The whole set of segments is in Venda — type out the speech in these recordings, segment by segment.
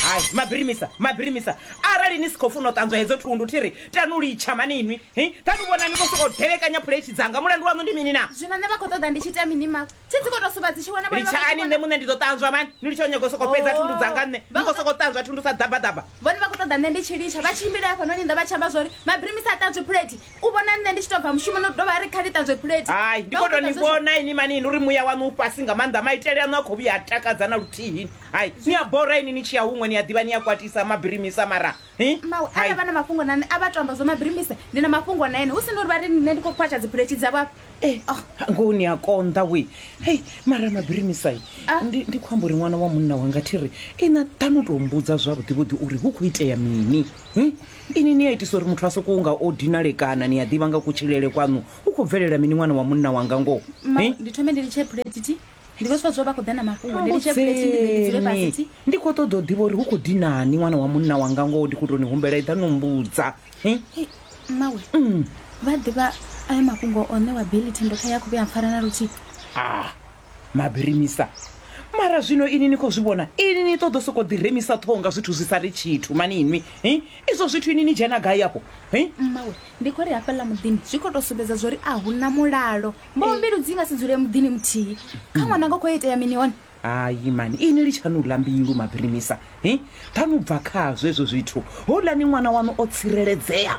hai mabirimisa mabirimisa arali ni si khou funa u ṱanzwa hedzo thundu thi ri tanu litsha mani inwi hi tanu vhona ni khou sokou delekanya phuleithi dzanga mulandu waṋu ndi mini na zwino nṋe vha khou ṱoḓa ndi tshi ita mini mawe thi dzi khou tou suvha dzi tshi vhona vhone vha khou litshani nṋe vhona- muṋe ndi ḓo ṱanzwa mani ni litsha u nyaga u sokou fhedza thundu dzanga nṋe ni khou sokou ṱanzwa thundu sa ḓabaḓaba vhone vha khou ṱoḓa nṋe ndi tshi litsha vha tshimbile hafhanoni nnḓa vha tshi amba zwa uri mabirimisa a ṱanzwi phuleti u vhona nṋe ndi tshi tou bva mushumoni u dovha a ri kha ni ṱanzwe phulethi hai ndi khou tou ni vhona ini mani ini uri muya waṋu u fhasi nga maanḓa maitele aṋu a khou vhuya a takadza na luthihi hai ni a bora ini ni tshi ya huṅwe ni a ḓivha ni a kwatisa mabirimisa mara mawe arali vha na mafhungo na nṋe a vha to amba zwo mabirimisa ndi na mafhungo na ene hu si na uri vha ri nṋe ndi khou khwatsha dziphulethi dzavho afha eh, oh. ngoho ni a konḓa we hei mara mabirimisa ah. ndi khou amba uri ṅwana wa munna wanga thi ri ina ṱanu tou mbudza zwavhuḓivhuḓi uri hu khou itea mini hm? Inwi ni a itisa uri muthu a sokou nga o dinalekana. Ni a ḓivha nga kutshilele kwaṋu hu khou bvelela mini ṅwana wa munna wanga ngoho? Ma, Ni. ndi thome ndi litshe phulethi. Ndi vho Swadziwa vha khou ḓa na mafhungo. Ndi litshe phulethi ndi ḓe ndi dzule fhasi. Mbudzeni. thi. Ndi khou ṱoḓa u ḓivha uri hu khou dinani ṅwana wa munna wanga ngoho. Ndi khou tou ni humbela eḓa no mmbudza. Ni. Hei, mmawe. Vha a ḓivha ayo mafhungo o ṋewa Billy thendo khae a khou vhuya a mpfara na luthihi. Ah! Mabirimisa, Mara zwino ini ni khou zwi vhona? Ini ni ṱoḓo sokou ḓi remisa ṱhoho nga zwithu zwi sa ri tshithu mani inwi hi? Izwo zwithu ini ni dzhena gai afho hi? Mmawe, ndi khou ri hafhaḽa muḓini zwi khou tou sumbedza zwo ri a hu na mulalo. Mboho mbilu dzi nga si dzule muḓini muthihi. Kha ṅwananga khou itea mini hone? Hayi mani ini litshanou ḽa mbilu Mabirimisa hi? Ṱhanu bva khazwo hezwo zwithu. Houḽani ṅwana waṋu o tsireledzea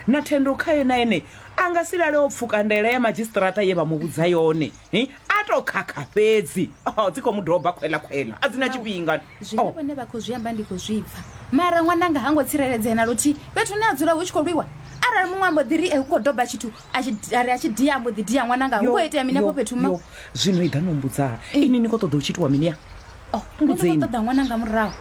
na thendo khae na ene a nga si lale o pfuka ndaela ya madzhisiṱiraṱa ye vha mu vhudza yone. Hi, a to khakha fhedzi Oh, dzi khou mu doba khwela khwela a dzi na tshifhinga zwine Oh, vhone vha khou zwi amba ndi khou zwi pfa mara ṅwananga ha ngo tsireledzea na luthihi fhethu hune a dzula hu tshi khou lwiwa arali muṅwe ambo ḓi ri e hu khou doba tshithu a tshi- a ri a tshi dia ambo ḓi dia ṅwananga hu yo, khou itea mini afho yo, fhethu ma yo. zwino i ḓa no mbudzaa ini ni khou ṱoḓa u tshi itiwa mini ya Oh, nṋe ndi mbudzeni. khou ṱoḓa ṅwananga murahu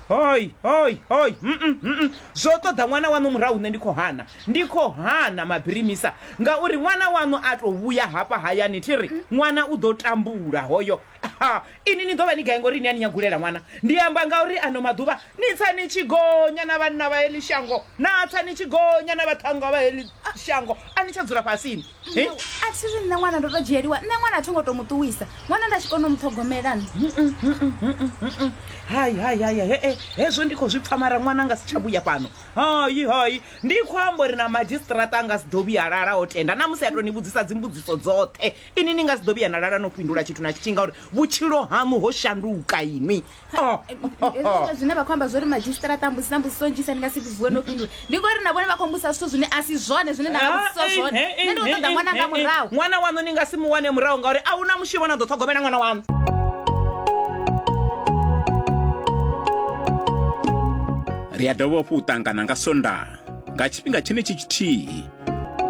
hoi hoi hoi mm, mm, mm, mm. zwo ṱoḓa ṅwana waṋu murahu nṋe ndi khou hana Ndi khou hana mabirimisa ngauri ṅwana waṋu a tou vhuya hafha hayani thi ri, Ṅwana u ḓo tambula hoyo. Ha, inwi ni ḓo vha ni gai ngori ni a ni nyagulela ṅwana? Ndi amba ngauri ano maḓuvha ni tsa ni tshi gonya na vhanna vha heḽi shango, na tsa ni tshi gonya na vhaṱhannga vha heḽi shango, a ni tsha dzula fhasini. He. A thi ri nṋe ṅwana ndo tou dzhieliwa, nṋe ṅwana a tho ngo tou mu ṱuwisa, ṅwana nda tshi kona u mu ṱhogomela nṋe. Hai, hai, hai, hai, he-e, hezwo ndi khou zwi pfa mara ṅwana nga si tsha vhuya fhano. hayi hayi ndi khou amba uri na madzhisiṱiraṱa a nga si ḓo vhuya lala o tenda na musi a tou ni vhudzisa dzimbudziso dzoṱhe ini ni nga si ḓo vhuya na lala no fhindula tshithu na tshithihi ngauri vhutshilo haṋu ho shanduka inwi oh, oh, oh. zwine vha khou amba zwo ri madzhisiṱiraṱa mbusi na mbudziso nnzhisa ni nga si vhuwe no fhindula ndi ngori na vhone vha khou mbusa zwithu zwine a si zwone zwine nda vhudzisa ah, zwone eh, eh, nṋe ndi khou eh, ṱoḓa ṅwana nga murahu ṅwana waṋu ni nga si mu wane murahu ngauri a hu na mushumo na ḓo ṱhogomela ṅwana waṋu ri a dovha hafhu u ṱangana nga Sondaha nga tshifhinga tshenetshi tshithihi.